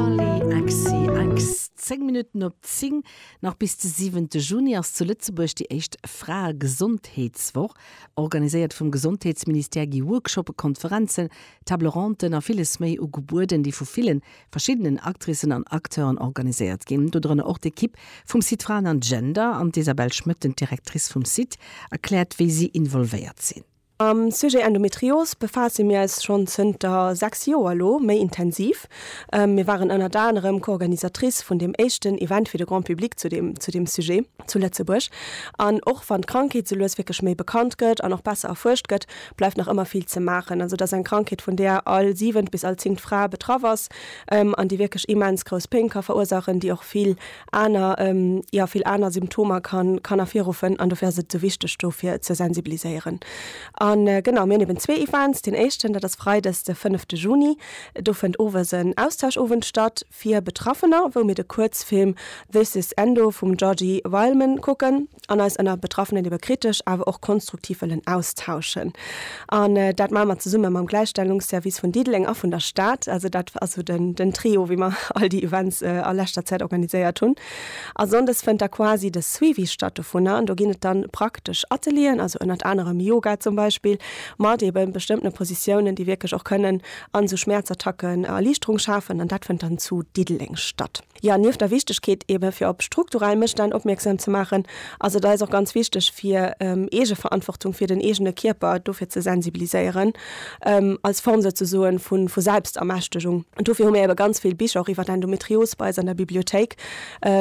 Allez, Axe, Axe, 10 Minutten op 10. Nach bis de 7 Juni ass zu Lëtzebuerg déi éischt Fraegesondheetswoch. Organiséiert vum Gesondheetsministère gi Workshoppe, Konferenzen, Table Ronten a villes méi ugebueden, déi vu ville verschiddenen Actricen an Acteuren organiséiert ginn. Dodrënner och d'Ekipp vum Site Fraen an Gender. An d'Isabelle Schmëtt, den d'Directrice vum Site, erkläert, wéi si involvéiert sinn. Mam Sujet Endometrios befaasse mir eis schonn zënter 6 Joer elo méi intensiv. Mir waren ënnert anerem Co-Organisatrice vun deem éischten Event fir de Grand Public zu deem zu deem Sujet zu Lëtzebuerg. An och wann d'Krankheet esou lues wierklech méi bekannt gëtt an och besser erfuerscht gëtt, bleift nach ëmmer vill ze maachen. Also et ass eng Krankheet vun där all siwent bis all zingt Fra betraff ass an déi wierklech immens grouss Péng ka verursaachen, déi och vill aner, jo vill aner Symptomer kann kann ervirruffen an dofir ass et esou wichteg do fir ze sensibiliséieren. An genau, mir hunn eben zwee Events, deen éischten dat ass Freides de fënnefte Juni, do fënnt owes en Austauschowend statt fir Betraffener, wou mir de Kuerzfilm This is Endo vum Georgi Wileman kucken. an eis ënner Betraffenen iwwer kritesch awer och konstruktiv wëllen austauschen. An dat maache mer zesumme mam Gläichstellungsservice vun Diddeleng a vun der Stad. Also dat ass esou den Trio, wéi mer all déi Events a leschter Zäit organiséiert hunn. A sonndes fënnt da quasi de Suivi statt dovunner an do ginn et dann praktesch Atelieren, also ënnert anerem Yoga zum Beispill, mat eebe bestëmmtene Positiounen, déi wierklech och kënnen an esou Schmäerzattacken Erliichterung schafen. An dat fënnt dann zu Diddeleng statt. Jo, nieft der Wichtegkeet eebe fir op strukturell Mësstänn opmierksam ze maachen, ass et eis och ganz wichteg fir Eegeverantwortung fir den eegene Kierper dofir ze sensibiliséieren, als Form souzesoen vu Selbstermächtegung. Dofir hu mir eebe ganz vill Bicher och iwwer Endometrios bei eis an der Bibliothéik.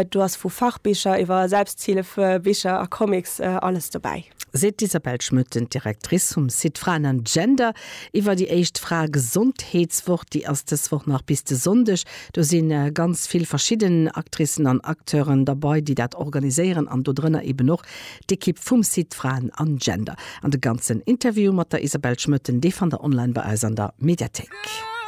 Do ass vu Fachbicher iwwer Selbsthilfebicher a Comics alles dobäi. Seet d'Isabelle Schmoetten, d'Directrice vum Site Fraen an Gender iwwer déi éischt Fraegesondheetswoch. Déi ass dës Woch nach bis de Sonndeg, Do si ganz vill verschidden Actricen an Acteuren derbei, déi dat organiséieren an do drënner eben och d'Ekipp vum Site Fraen an Gender. An de ganzen Interview mat der Isabelle Schmötten, dee fannt der online bei eis an der Mediathéik.